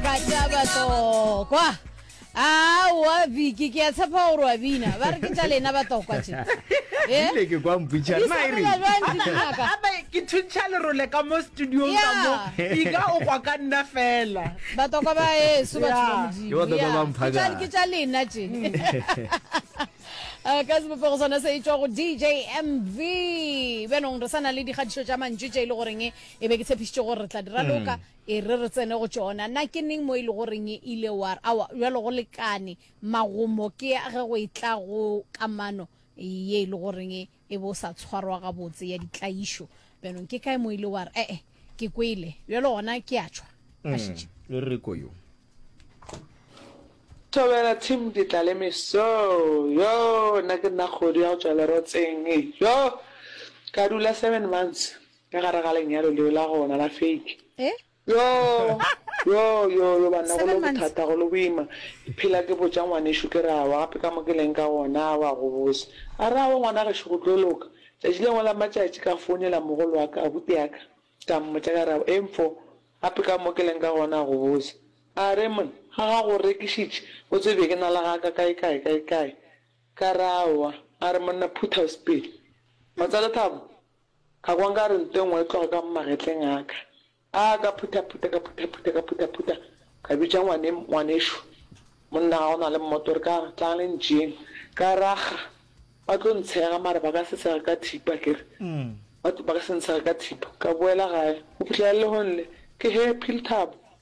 ka taba tokwa awa biki ke a tshepa gore wa bina ba re ke tša lena ba tokwa tše Eh? ile ke kwa mputšha Di nna e sepela reng jwang dinaka? gape ke thuntšha lerole ka mo studiong ka mo Yeah. ika o kwa ka nna fela batokwa ba eso batho ba Yeah. Ke batokwa ba modimo mphaka. Yeah. ke tša lena tše Eh, ka sebopego sona se e tšwa go dj mv bjanong re sa na le dikgatišo tša mantšu tše e le goreng e be ke tshepišitše gore re tla di raloka E re re tsene go tšona. Na ke neng mo e lego reng e ile wa re, Awa, bjalo go lekane, magomo ke a ge go etla go kamano ye e lego reng e bo sa tshwarwa gabotse ya ditlaišo? Bjanong ke kae mo ile wa re, E-e, ke kwele, bjalo gona ke a tšhwa? A šetše. E re ko yo. Thobela Tim Ditlalemeso, Yoo, nna ke nna kgodu ya go tšwa lerotseng, yoo, ka dula seven months, Ka gare ga lenyalo leo la gona la fake. Eh? Yo, yo, yo, yo, banna go Seven lo months. bothata, go lo boima. Ke phela ke botša ngwanešu ke re awa, gape ka mo ke leng ka gona, awa, go bose. A re awa ngwana gešo go tlo loka. Tšatši le lengwe la matšatši ka founela mogolo wa ka, abuti ya ka, ka mmotša ka re awa, eng fo? Gape ka mo ke leng ka gona, go bose. A re monna, ga ga go rekišitše, o tsebe be ke na le ga ka kae kae kae kae. Ka re awa. A re monna phutha o sepele. Wa tswa Lethabo? Ka kwa nka re nto e nngwe e tloga ka mo magetleng a ka. Aa, ka phuthaphutha, ka phuthaphutha, ka phuthaphutha, ka bitša ngwane, ngwanešu, monna ga o na le mmoto, re ka re, tlang le ntšeeng. Ka rakga, Ba tlo ntshega, mare ba ka se ntshege ka thipa, ke re, ba, ba ka se ntshege ka thipa. Ka boela gae, go fihlela lehong le, ke he, Philthabo.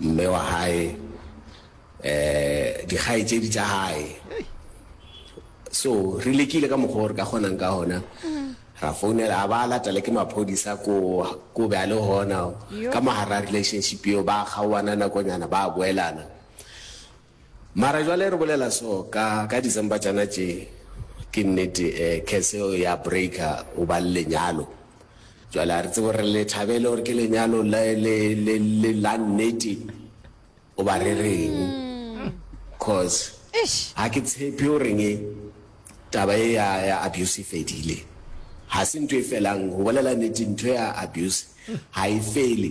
mme wa hae, um dikgaetšedi tša hae. So re lekile ka mokgwa o re ka kgonang ka gona, ra founela a ba latela ke maphodisa ko ko be a le gona ka mogara relationship eo, ba kgaoana nakonyana ba boelana. Mara jwale re bolela so ka ka December tšana tše ke nnete eh curse eo ya breaker o ba le lenyalo jwale a re tsebe gore le thabele gore ke lenyalo le le le le la nnete o ba re reng cause Eish. ha ke tshepe o reng e taba e ya ya abuse e fedile ha se ntho e felang go bolela nnete ntho ya abuse ha e fele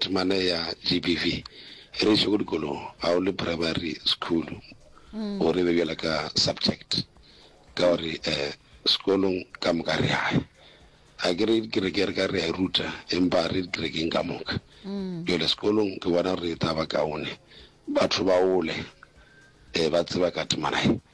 Temana ya GBV e re iše go dikolong ga o le primary school o re be bjala ka subject ka gore um sekolong ka moka re yaya a ke re dikereke re ka re ya e ruta empa re dikerekeng ka moka jale sekolong ke bona gore e taba kaone batho ba ole um ba tseba ka temana e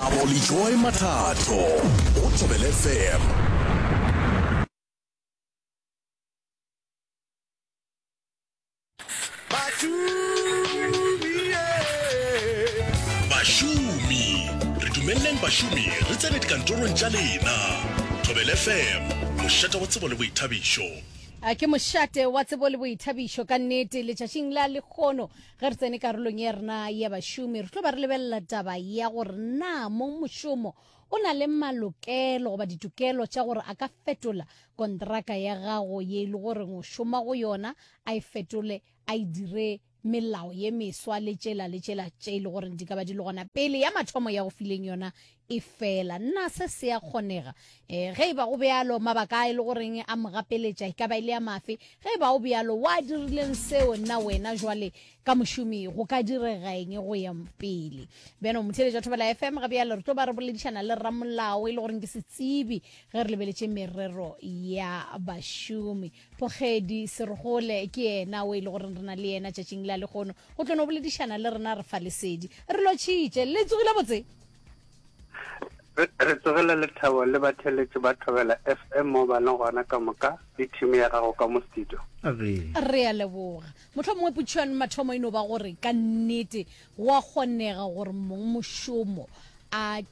Abolijoy Mathato, o Thobele FM. Bašomi, re dumeleleng bašomi re tsene dikantorong tša lena. Thobele FM, mošata wa tsebo le boithabišo. A ke mošate wa tsebo le boithabišo ka nnete letšatšing la lekgono Ge re tsene karolong ya rena ya bašomi, re tlo ba re lebelela taba ya gore na mong mošomo o na le malokelo goba ditokelo tša gore a ka fetola kontraka ya gago ye e le gore o šoma go yona, a e fetole, a e dire melao ye meswa le tšela le tšela tše e le gore di ka ba di le gona pele ya mathomo ya go fileng yona Efela na se se a kgonega? Ee, ge e ba go bjalo. Mabaka a e lego reng a mo gapeletša e ka ba e le a mafe? Ge e ba go bjalo, wa dirileng seo? Na wena jwale ka mošomi go ka direga eng go ya pele? Bjana o motheeletši wa Thobela FM. Ga bjalo re tlo ba re boledišana le ramolao e le goreng ke setsebi ge re lebeletše merero ya bašomi. Pogedi Serogole ke yena o e le goreng re na le yena tšatšing la lekgono go tlo no boledišana le rena re fa lesedi. Re lotšhitše. Le tsogile botse? re tsogela lethabo le batheletše ba thobela fm mo ba le gona ka moka le thimi ya gago ka mo studio re a leboga motlho mongwe putšhwane mathomo e no ba gore ka nnete go a kgonega gore mong mošomo a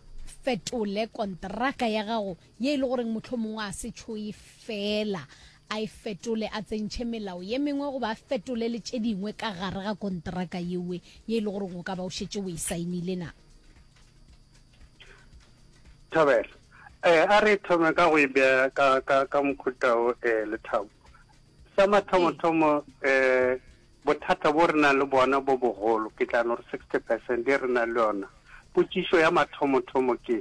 fetole kontraka ya gago ye e le goreng motlho mongwe a se tšhoe fela a e fetole a tsentšhe melao ye mengwe goba a fetole le tše dingwe ka gare ga kontraka yewe ye e le goreng o ka ba o šetse o e saenile na Thabela, eh, a re thome ka go e beya ka, ka, ka mokhutao um eh, lethabo sa mathomothomo um eh, bothata bo re nang le bona bo bogolo ke tla no re sixty percent e re nang le yona potšišo ya mathomothomo ke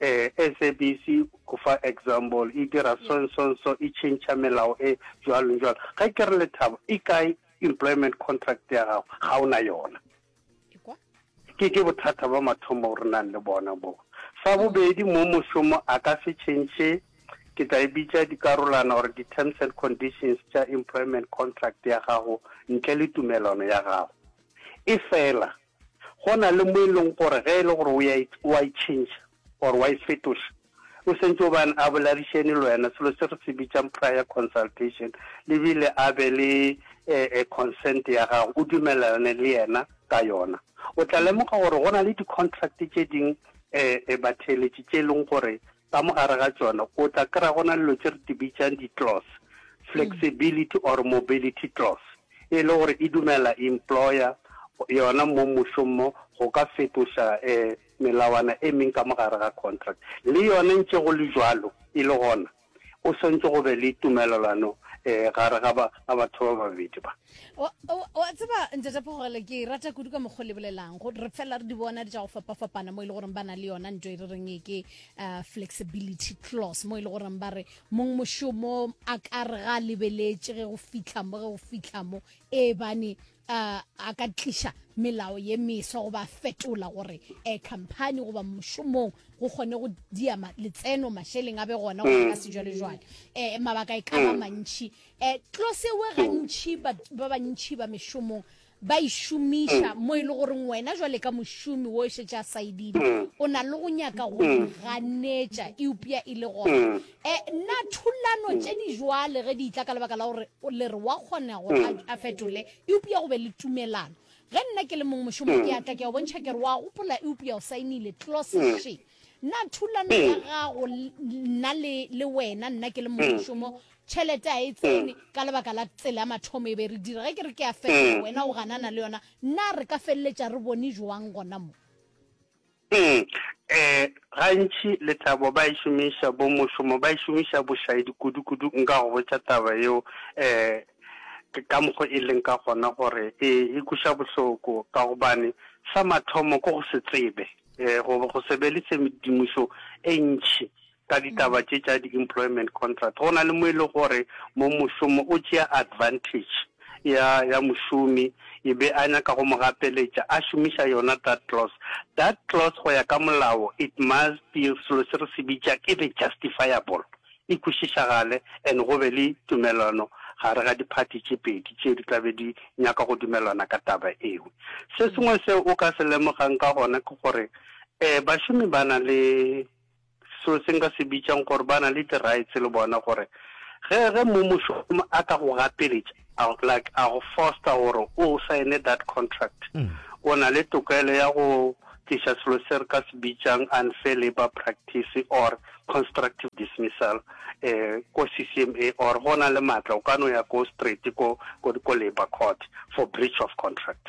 Ee, SABC o fa example, e dira so and so and so, e tšhentšha melao e jwalo jwalo. Ge ke re Lethabo, e kae employment contract ya gago? Ga o na yona. Ke ke bothata ba mathomo o re nang le bona bo. Sa bobedi, mo mošomo a ka se tšhentšhe, ke tla e bitša dikarolana or di-terms and conditions tša employment contract ya gago ntle le tumelano ya gago. Efela Go na le mo e leng gore ge e le gore o a e tšhentšha or wa e fetoša, o sentše o bane a boladišene le wena, selo se re se bitšang prior consultation, le bile a be le consent ya gago, o dumelelane le yena ka yona. O tla lemoga gore go na le di-contract tše ding batheeletši tše e leng gore Ka mo gare ga tšona o tla kry-a go na le dilo tše re di bitšang di-clause, flexibility or mobility clause, e le gore e dumella employer yona mo mmušong mo go ka fetoša melawana e meng ka mo gare ga contract. Le yona ntše go le bjalo e le gona go swantše go be le tumelelano gare ga batho ba babedi ba. wa tseba ntate phogele ke rata kudu ka mokgwa le bolelang re fela re di bona di tsa go fapafapana mo e le goreng ba na le yona nto e re reng e ke uh, flexibility clause mo e le goreng ba re mong mošomo a ka re ga lebeletse ge go fitlha mo ge go fitlha mo e bane uh, a ka tliša melao ye meswa go ba fetola gore um company goba mošomong go kgone go dia letseno mašeleng a be gona go ka mm. sejwalejwale um mabaka e ka ba mm. mantšhi E tlosewe gantši ba bantši ba mešomong ba e šomiša mm. mo e le goreng wena jwale ka mošomi wo e šetše a saedile mm. o na le go nyaka go mm. ganetša eupša e le gona um na thulano tše di jwale ge di itla ka lebaka la gore le re wa kgona go a fetole eupša go be le tumelano ge nna ke le mongwe mošomo ke atla ke a bontšha ke re wa gopola eupša o saenile tloseshe na thulano ya gago nna le wena nna ke le mongwe mošomo tšhelete a e tsene mm. ka lebaka la tsela ya mathomo e be re dira ge ke re ke ya fetola mm. wena o ganana le yona na re ka feleletša re bone joang gona mo um gantši lethabo ba e šomiša bo mošomo ba e šomiša bošaedi kudu-kudu nka go botša taba yeo um ka mokgo e leng ka gona gore e e kuša bohloko ka gobane sa mathomo ko go se tsebe um go se be le tshedimošo e ntšhi ka ditaba tše tša di employment contract go na le mo e le gore mo mošomo o tšea advantage ya ya mošomi e be a nyaka go mo gapeletša a šomiša yona that clause that clause go ya ka molao it must be selo se re se bitša ke be justifiable e kwešišagale and go be le tumelano gare ga diphathi tše pedi tše di tlabe di nyaka go dumelana ka taba eo se sengwe seo o ka se lemogang ka gona ke gore um bašomi ba na le seo se nka se bitšang gore ba na le di-rights le bona gore ge ge mmušo a ka go gapeletša like a go foster gore o sign that contract mm. o na le tokelo ya go tliša selo se re ka se bitšang unfair labor practice or constructive dismissal eh ko CCMA or go na le matla o ka no ya ko straight ko ko labor court for breach of contract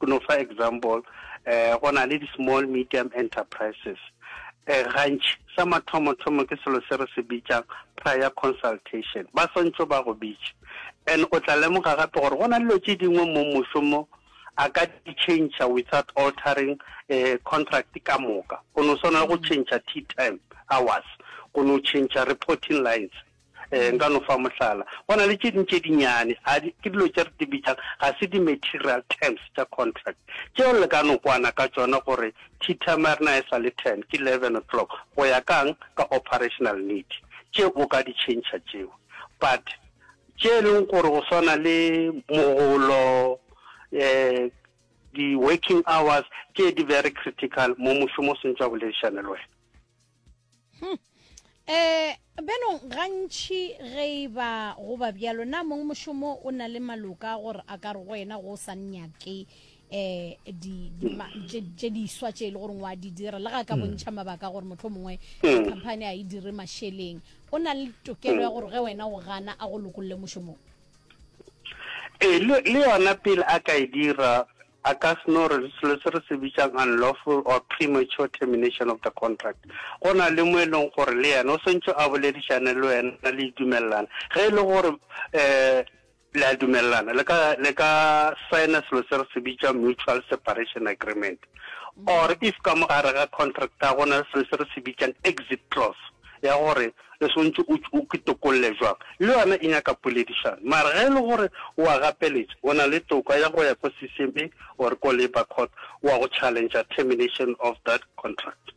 Go no fa example, eh, go na le di-small medium enterprises. Eh, gantši sa mathomo-thomo ke selo se re se bitšang prior consultation. Ba swantšho ba go bitše. And o tla lemoga gape gore go na le dilo tše dingwe mo mošomo a ka di change without altering eh, contract ka moka go no swana le go mm. change tea time hours go no change reporting lines um nka no fa mohlala go na le tše dintše dinyane ke dilo tše re di bitšang ga se di-material terms tša contract tšeo le ka no kwana ka tsona gore tea time ya rena e sa le ten ke eleven o'clock go ya kang ka operational need tše o ka di change tšeo but tše e leng gore go swana le mogolo um di-working hours tše di very critical mo mošomo o swantšwa boledišane le wena hmm. eh beno gantši ge e ba go ba bjalo na mongwe mošomo o na le maloka gore a ka re go wena go sa nnyake um tše di swa tše e le gore wa di dira le ga ka hmm. bontšha mabaka gore motlho mongwe hmm. company a e dire mašeleng o na le tokelo ya gore ge wena o gana a go lokolole mošomong ee le yona pele a ka e dira A ka se no re selo se re se bitšang unlawful or premature termination of the contract. Go na le mo e leng gore le yena o swantšwe a boledišane le wena le dumelelana. Ge e le gore um le a dumelelana le ka le ka signa selo se re se bitšang mutual separation agreement or if ka mo gare ga contract a go na le selo se re se bitšang exit clause ya gore e swanetše o o ke tokolle jwang, le yona e nyaka poledišano. Mara ge e le gore o a gapeletša, o na le toka ya go ya ko CCMA or ko Labour Court wa go challengea termination of that contract.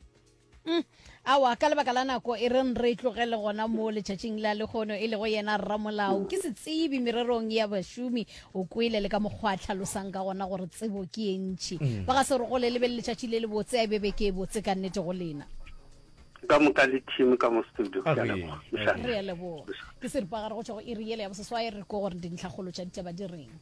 Uhm, awa, ka lebaka la nako e reng re e tlogele gona moo letšatšing la lekgono, e lego yena rramolao ke setsebi mererong ya bašomi. O kwele le ka mokgwa a tlhalosang ka gona gore tsebo ke ye ntši. Ba ga se re gole le be le letšatši le lebotse, a e be beke e botse ka nnete go lena. ka moka le team ka mo studio ke re ya leboga ke seripagare go tšwa go iri yele ya boseswai re ko gore dintlhakgolo tša ditaba di reng